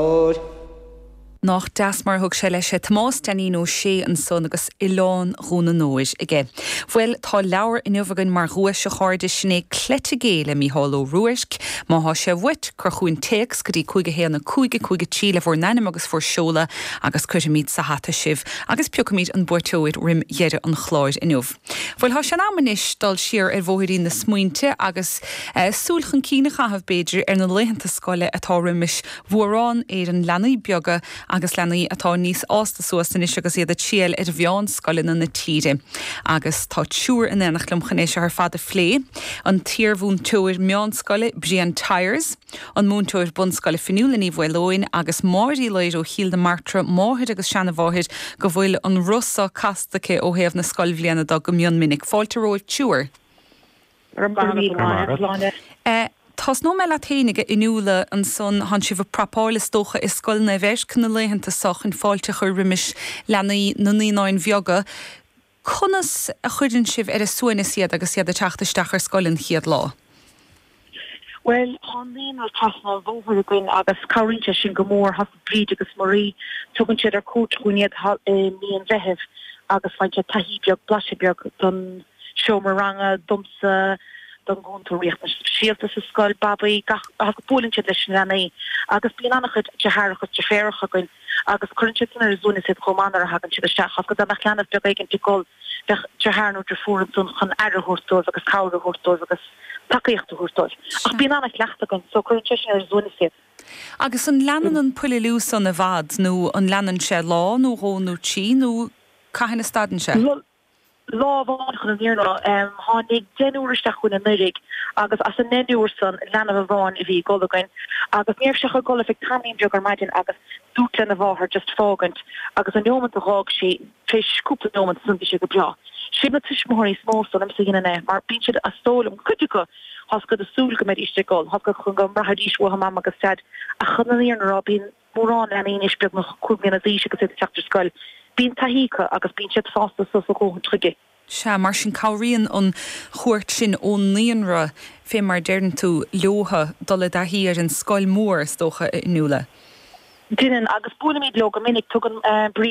Óir. Nách deas mar a thug sé leis é, Tomás Deainín Ó Sé ansan agus Oileán Dhún an Óir aige. Bhuel, tá leabhar inniu againn mar dhuais, a chairde, sin é Cleite Gé le Mícheál Ó Ruairc. Má thá sé uait, cuir chughainn téacs go dtí 51155 le bhur n-ainm agus bhur seoladh agus cuirfimid sa hata sibh agus piocfaimid an buaiteoir roim dheireadh an chláir inniu. Bhuel, tá sé in am anois dul siar ar bhóithrín na smaointe agus súil chun cinn a chaitheamh, b'fhéidir, ar na laethanta scoile atá roimis mhórán Éireann, leanaí beaga agus leanaí atá níos fhásta suas anois agus iad ag triall ar mheánscoileanna na tíre. Agus tá triúr in aonacht liom chun é seo ar fad a phlé, an t-iarmhúinteoir meánscoile, Brian Tyers, an múinteoir bunscoile Fionnuala Ní Mhaoleoin agus Máire Uí Laoire ó Chill na Martra, máthair agus seanamháthair, go bhfuil an roth seo casta aici ó thaobh na scoilbhliana de go mion minic. Fáilte romhaibh a thriúr. Tosnóidh mé leat féin, a Fhionnuala, ansan thánn sibh ag preipeáil is dócha i Scoil Naomh Eirc na laethanta seo chun fáilte a chur roimis leanaí na naíonán beag. Conas a chuireann sibh ar a suaimhneas iad agus iad ag teacht isteach ar scoil an chéad lá? Bhuel, tá an naíonra trasna an bhóthair againn agus cabhraíonn sé sin go mór. Tá's agat Bríd agus Marie, tugann siad ar cuairt chugainn iad i mí an Mheithimh agus faigheann siad taithí beag, blaiseadh beag den seomra ranga, domsa, don gcúntóir riachtanais speisialta sa scoil, Babaí, tá's agat, buaileann siad leis na leanaí agus bíonn an-chuid driotháracha agus driféaracha againn. agus cuireann sé sin ar a suaimhneas iad chomh maith nuair a thagann siad isteach, ach dá mbeadh leanbh beag éigin ag gol bheadh driotháir nó drifiúr ansan chun aire a thabhairt dóibh agus cabhair a thabhairt dóibh agus tacaíocht a thabhairt dóibh. Ach bíonn ana-chraic againn so cuireann sé sin ar a suaimhneas iad. Agus an leanann an puililiú san i bhfad nó an leanann sé lá nó dhó nó trí nó cathain a stadann sé? Bhuel, lá amháin chun na fírinne a rá. Tháinig deichniúr isteach chugainn anuiridh agus as an ndeichniúr san leanbh amháin a bhí ag gol againn agus ní raibh sé ach ag gol ar feadh tamaillín beag ar maidin agus dúrt lena mháthair just fágaint agus an neómant a dh'fhág sí, tar éis cúpla neómant san bhí sé go breá. Siad na tuismitheoirí is mó is dóigh liomsa a dheineann é mar bíonn siad is dóigh liom, cuid acu, tá's agat, ag súil go mbeidís ag gol, tá's agat, go mbraithfidís uathu Mama agus Deaid ach chun na fírinne a rá bíonn mórán leanaí anois beagnach cúig mbliana d'aois agus iad ag teacht ar scoil, bíonn taithí acu agus bíonn siad fásta suas a ndóthain chuige. Sea, mar sin, cabhraíonn an chuairt sin ón naíonra, fé mar a deireann tú, leotha dul i dtaithí ar an scoil mhór, is dócha, a Fhionnuala? Deineann, agus buailimid leo go minic. Tugann Bríd.